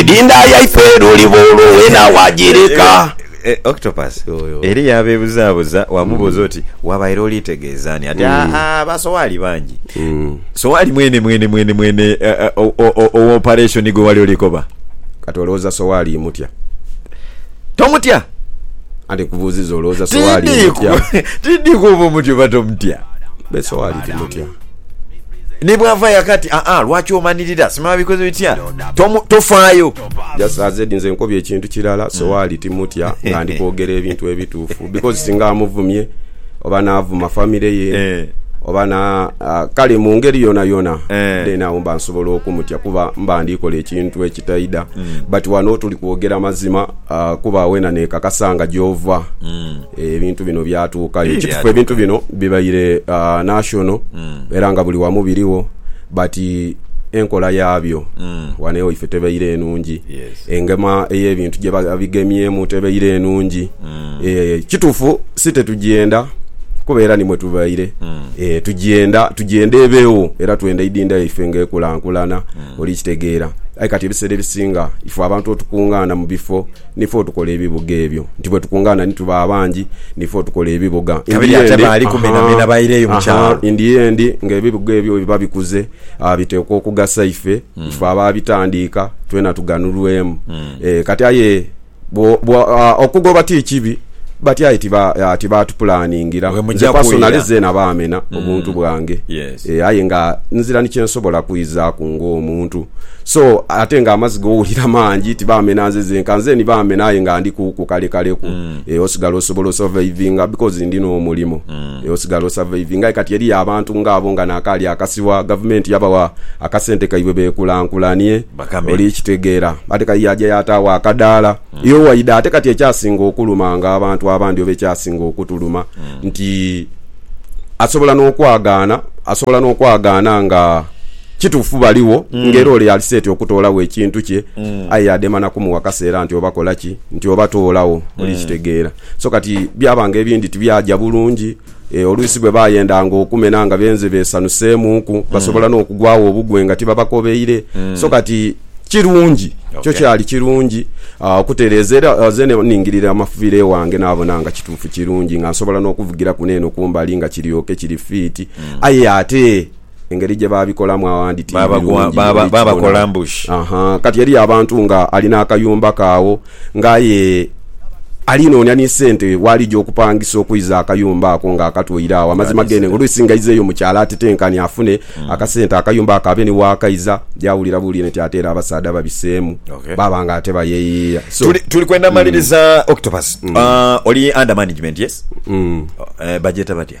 Idinda yaife luliba olwo wena wagireka. Octopus eriyo abeebuzaabuza, waamubuuza oti, Wabaire olitegeeza ani? Ati, Aa, ba Sowali bangi. Sowali mwene mwene mwene mwene owa opareshoni gwe wali olikoba? Kati olowooza Sowali mutya? Tomutya! Anti nkubuuzizza, olowooza Sowali mutya? Tiidhi kuba omutya oba tomutya. Be Sowali timutya. Ni bw'ava yaka ati, Aa, lwaki omanirira? Simanya bikoze bitya. Tomu, tofaayo. Just as ed nze nkobye ekintu kirala, so waali timutya nga ndi kwogera ebintu ebituufu. Because singa amuvumye, oba n'avuma family ye, Eh. oba na, ah, kale mu ngeri yonayona, Eh. then awo mba nsobola okumutya kuba mba ndi kola ekintu ekitaidha. But wano tuli kwogera mazima, ah, kuba wena nekakasa nga gy'ova. Ebintu bino byatuukayo. Ekitufu ebintu bino bibaire uh, national mm. era nga buli wamu biriwo but enkola yaabyo mm. wano ewaife tebeire enungi yes. engema ey'ebintu gye babigemyemu tebeire enungi mm. e, kitufu si tetugyenda kuba era nimwe tubaire mm. e, tugyenda tugyenda ebeewo era twenda idinda yaife ng'ekulankulana mm. oli kitegeera aye kati ebiseera ebisinga ife abantu otukungaana mu bifo Nife otukola ebibuga ebyo. Nti bwetukungaana ni tuba abangi, nife otukola ebibuga. In Kabiri the ate end, baali kumi na aha, bena baireyo mu aha, kyalo. in the end, nga ebibuga ebyo bwe biba bikuze, ah, biteekwa okugasa ife. Ife abaabitandiika, twena tuganulwemu. Eh, kati aye, bwo, bwo, ah, okugoba ti kibi. Bati aye tibaatupulaaningira. Nze pasonale zeena baamena obuntu bwange. Ee, aye nga nzira ni kye nsobola kwizaaku ng'omuntu. So, ate ng'amaziga owulira mangi, tibaamena nze zenka. Nze ni baamena aye nga ndi ku kukalekaleku. Ee, osigala osobola osavaivinga bikozi ndi n'omulimo. Ee, osigala osavaivinga. Aye kati eriyo abantu ng'abo nga naakaali akasibwa, gavumenti yabawa akasente kaibwe beekulankulanie, oli kitegeera. Ate k'aye yaaja yaataawo akadaala. Yo waidha ate kati ekyasinga okulumanga abantu abandi oba ekyasinga okutuluma nti asobola n'okwagaana, asobola n'okwagaana nga kituufu baligho nga era ole ali seti okutoolagho ekintu kye aye yadema na kumuwa kaseera nti oba kola ki, nti oba toolagho. Oli kitegeera? So kati byaba nga ebindi tibyaja bulungi. E, oluusi bwe baayendanga okumena nga benze beesanuseemuuku, basobola n'okugwagho obugwe nga tibabakobeire. So kati kirungi, kyo Okay. kyali kirungi ah, okutereeza. Era ah, nze ne ningirira amafubiro ewange naabona nga kituufu kirungi nga nsobola n'okuvugiraku n'eno ku mbali nga kiryoke kiri fiiti. Aye ate Engeri gye baabikolamu awandi ti Baaba gwa- birungi, baaba- oli baaba kibona. Columbus. Aha, kati eriyo abantu nga alina akayumba ke agho nga aye ali noonia ni sente w'alija okupangisa okuiza akayumba ako nga akatwaire agho. Amazima Nga geene, oluusi nga aizeeyo mu kyalo atetenkane afune akasente akayumba ako abe ni waakaiza, yaawulira buwulire nti ate era abasaadha babiseemu, Okay. baaba nga ate bayeyiiya. So, Tuli, tuli kwenda maliriza Octopus. Ah, oli under management, yes? Eh, bajeta batya?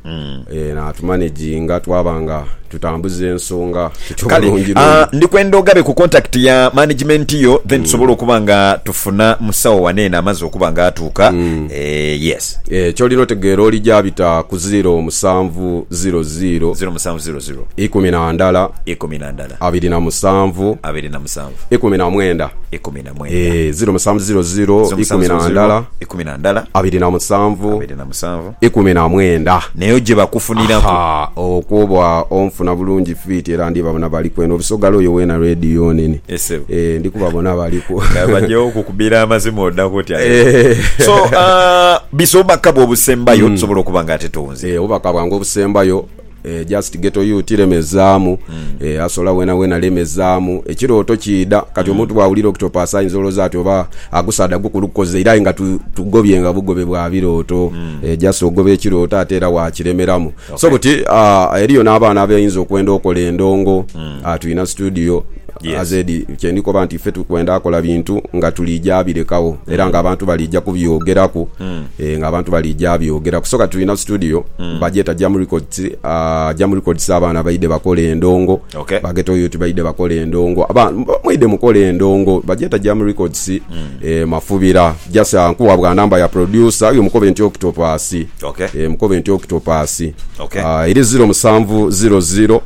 Ee, n'atumanaginga twaba nga tutambuza ensonga tutyo Kale, bulungi ah, lungi. ndi kwenda ogabe ku contact ya management yo then tusobole okuba nga tufuna musawo wano eno amaze okuba nga atuuka. Eh, yes. Eh, ky'olina otegeera olija bita ku ziiro musanvu ziiro ziiro, 0700 ikumi na ndala, 12 abiri na musanvu, 27 ikumi na mwenda. 19 Eh, ziiro musanvu ziiro ziiro, ikumi na 0700 ndala, 12 abiri na musanvu, 27 ikumi na mwenda. Neyo gye bakufuniraku. Ha, okwo oba onfuna bulungi fiiti era ndibabona baliku eno Busogala oyo weena Radio nene. Yes sebo. Eeh ndi kubabona baliku. Nga bagyewo okukubira amazima odaku otya leero. Eeh. So aah bisa obubaka bwo obusembayo tusobola okuba nga ate tuwunzika. Eeh obubaka bwange obusembayo. Eeh just ghetto youth lemezaamu eeh asola wena wena lemezaamu ekirooto kiidha kati omuntu bwawulira octopus ayinza olooza ati oba agusaadha gukulu gukoze iraye nga tu tugobye nga bugobe bwa birooto eeh just ogoba ekirooto ate era wakiremeramu so buti aah eriyo nabaana abayinza okwenda okola endongo aah tuyina studio AZ, Kye ndi koba nti ife tukwenda kola bintu nga tuliija abirekagho era nga abantu baliija kubyogeraku, nga abantu baliija abyogera. Kusoka tulina studio bagyeta Jam Records, Jam Records abaana baidhe bakola endongo, ba Ghetto Youth baidhe bakola endongo, abaana mwidhe mukola endongo. Bagyeta Jam Records e Mafubira. Just nkuwa bwa number ya producer oyo mukobe nti Octopus, mukobe nti Octopus, eri ziro musanvu ziro ziro.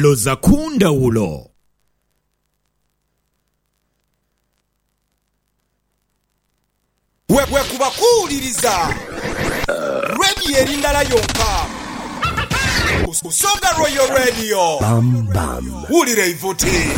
Loza ku ndhawulo. Bwekuba kuwuliriza Radio eri ndala yonka, Busoga Royal Radio. Wulira eivuti.